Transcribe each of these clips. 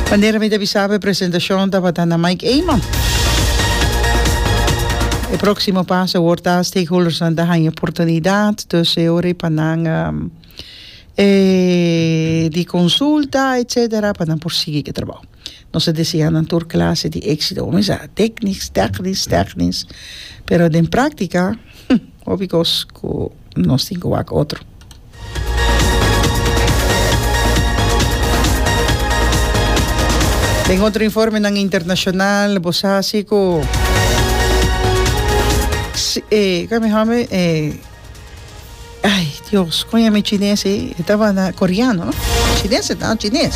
Manera mi ta bisaba e presentashon tabata na Mike Eman. E próksimo pas a wòrd ta stakeholdersnan ta haña oportunidat, dus e ora pa nan di konsulta etsetera pa nan por sigui ku e trabou. Nos ta deseá nan tur klase di éksito kuminsá teknis tèknis tèknis pero den práktika hopi kos ku nos tin ke wak otro. Den otro informenan internashonal bo sa si ku ke mi hòmber ai Dios kon yami chines ei e tabata koreano no chines e ta chines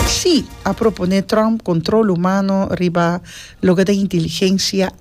si a propone Trump kontrol humano riba loke ta inteligensia.